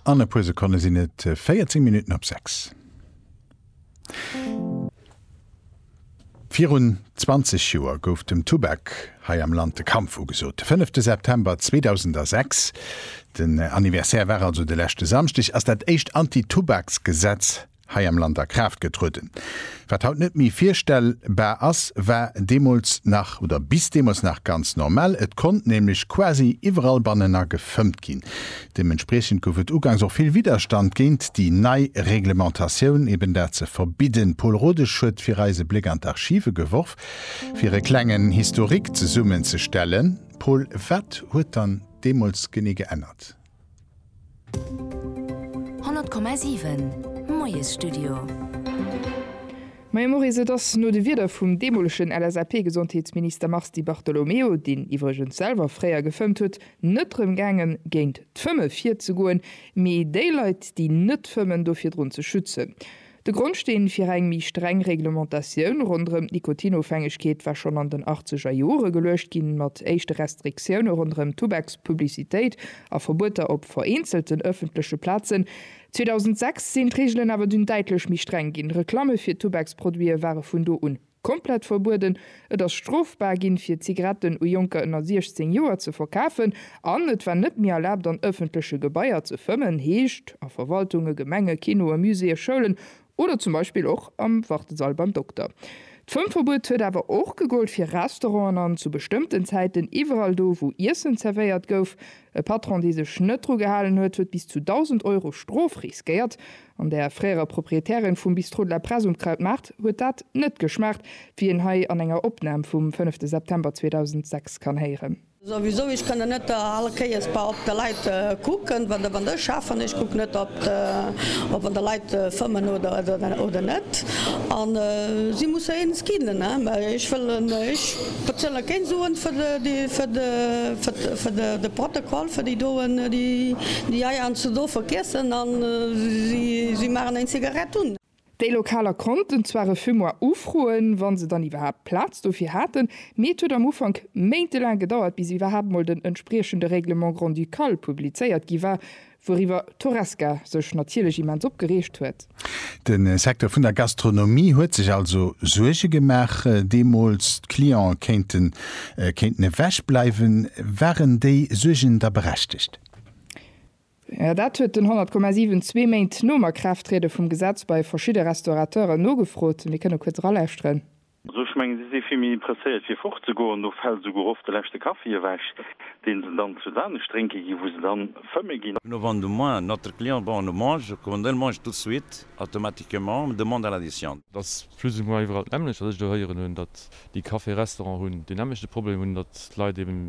An e puer Sekonne sinn et 14 Minutten op 6. Virun 20 Joer gouf dem Tubak hei am Land de Kampf ugesot. De fënnefte September 2006, den Anniversaire war also de leschte Samschdeg, ass dat éischt Anti-Tubaks-Gesetz hei am Land a Kraaft getrueden. Wat haut net méi virstell bar ass, war deemools nach oder bis deemools nach ganz normal. Et konnt nämlech quasi iwwerall bannener gefëmmt ginn. Deementspriechend gouf et uganks och vill Widderstand géint déi nei Reglementatioun, eben dat ze verbidden. Pol Rodesch huet fir eis e Bléck an d'Archive geworf, fir e klengen Historique zesummenzestellen. Pol, wat huet dann deemools genee geännert? 100,7 Moiesstudio. Majo Maurice, et ass no de Wierder vum deemolegen LSAP-Gesondheetsminister Mars Di Bartolomeo, deen iwwregens selwer fréier gefëmmt huet, net rëm gaangen, géint d'Fëmme virzegoen, mee déi Leit, déi net fëmmen, do virdrun ze schützen. De Grondsteen fir eng méi streng Reglementatioun ronderëm d'Nikotinofhängegkeet war schonn an den achtzeger Jore geluecht ginn, mat éischte Restriktioune ronderëm d'Tubakspublicitéit a Verbueter op vereenzelten ëffentleche Plazen. 2006 sinn d'Reegelen awer dunn däitlech méi streng ginn, Reklamme fir Tubaksproduite ware vun do un. Komplett verbueden, et ass strofbar ginn, fir Zigaretten u Jonker ënner 16 Joer ze verkafen an et war net méi erlaabt, an ëffentleche Gebaier ze fëmmen, heescht a Verwaltunge, Gemenge, Kinoe, Muséeë, Schoulen oder zum Beispill och am Wartesall beim Dokter. D'Fëmmverbuet huet awer och gegollt fir Restauranten an zu bestëmmten Zäiten iwwerall do, wou Iessen zerwéiert gouf. E Patron, dee sech net dru gehalen huet, huet bis zu 1.000 Euro Strof riskéiert. An der fréierer Proprietärin vum Bistrot de la Presse um Krautmaart huet dat net geschmaacht, wéi een hei an enger Opnam vum fënnefte September 2006 kann héieren. Souwisou, ech kënnen net all Kéiers bei op de Leit kucken, wann ech schaffen. Ech kucken net op wann der Leit fëmmen oder net. An si musse eens ginn. Ech wëllen. Wat soll ech géint soen fir de, fir de, fir de, de Protokoll, fir déi doen, déi, déi hei eis ze do vergiessen a si, si maachen eng Zigarett un. Déi Lokaler konnten zwar e Fumoir ufroen, wa se dann iwwerhaapt Plaz dofir haten, mee et huet am Ufank méintelaang gedauert, bis iwwerhaapt mol den entspriechende Règlement grand-ducal publizéiert gi war, Wouriwwer d'Horesca sech natierlech immens opgereegt huet. De Secteur vun der Gastronomie huet sech also Suerge gemaach deemools, d'Cliente kéinten kéinten ewech bleiwen. Waren déi Suergen da berechtegt? Jo, dat huet den 100,7 zwee Méint nom Akraafttriede vum Gesetz bei verschidde Restaurateure nogefrot. Mir kënne kuerz eralauschteren. Also ech mengen, si si vill méi impresséiert fir fortzegoen. Do fält esouguer oft de leschte Kaffi ewech, dee se dann zu Saanich drénke ginn, wou se dann fëmme ginn. No Vente de moins, notre client bon le mange, commande le mange tout de suite, automatiquement, me demande à l'addition. Et ass plus ou moins iwwerall d'nämmlecht, wat ech do héieren hunn, datt déi Café-Restaurant hunn deen nämmlechte Problem, hunn, datt d'Leit eben